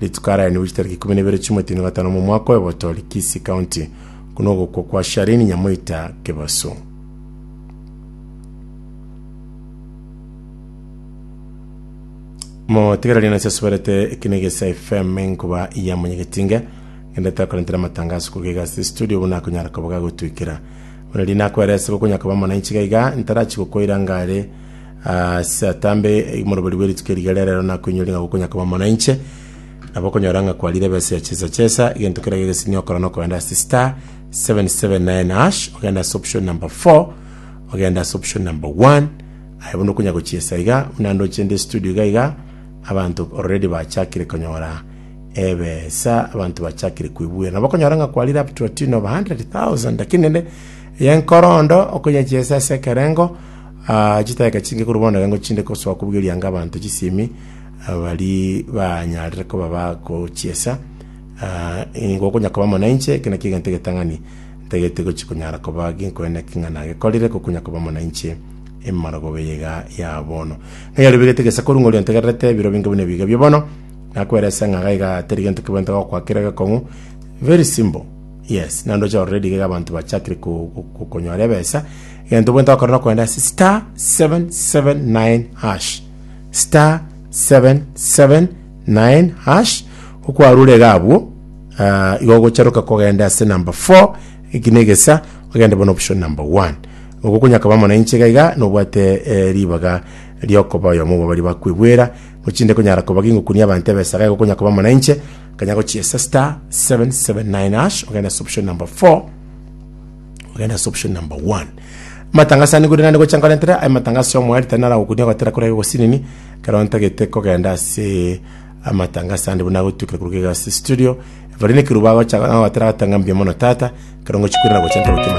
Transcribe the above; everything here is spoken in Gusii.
Rituko araeniwe chitariki ikomi na ibere chi'omweti na gatano omwaka oyobotori Kisii County buna ogokwa kwa Shareen Nyamoita Kebaso. Motigererie nase asuberete eki negesa FM enkuba ya monyegetinge ngende takorentera amatangazo kuruga iga ase studio buna akonyara koba gagotwikera buna rina akoerese gokonyakaba mwananchi gaiga ntarachi gokoira ngare Ase atambe omorobori bwe rituko eriga riarero nakoinyorire ng'a gokonya koba mono inche, nabo okonyora ng'a kwarire ebesa ya chesa chesa, egento keria gegesinia okora nokogenda ase star 779 hash, ogende ase option number 4, ogende ase option number 1, aye buna okonya gochiesa iga, buna ndoche inde studio iga iga, abanto already bachakire konyora ebesa, abanto bachakire koibuera. Nabo okonyora ng'a kwarire up to a tune of 100,000 lakini rende, eya enkorondo, okonya chiesa ase ekerengo, Aa chidaka chinge korwa bono ekero ngochinde gosoa kobugerianga abanto chisemi, baria banyarire koba bagochiesa, aa, nigo okonya koba amo nainche, ekio nakio egento egetang'ani ntagete gochia konyara koba ginkonya naki ng'a nagekorire, gokonya koba amo nainche emarogobia eye iga ya bono. Ng'a ribegetwe egesaku ng'ori ontegererete, biro binge buna ebiga bia bono, nakoeresa ng'a iga iga teri gento kebwenerete gokoa kere gekong'u, very simple, yes, naende oche orore riga iga abanto bachakire ko- ko- konyora ebesa. Egento bwenta ogokora nokorenda ase star 779 hash star 779 hash okwarure iga abwo ah, igo ogocharoka kogenda ase number 4 eki negesa ogende bono option number 1 ogo okonyaka bamo na inche iga iga nobwate eh, ribaga riokoba oyomo obo bari bakwebwera nochinde konyara koba gingokunia abanto ebesa iga igo okonyaka bamo na inche kanya gochiesa star 779 hash ogenda ase option number 4 Ogende ase option number one. Amatangaso ane korende nande gocha nkorentera aye amatangaso ya omwari tari naragokunia gotera kore aye ogosinini ekero ntagete kogenda ase amatangaso ande buna nagotuikera korwa iga ase studio. Evarine Kiruba agocha gotera agoteba ng'a mbuya mono tata ekero ngochi koirana gocha nkorwa.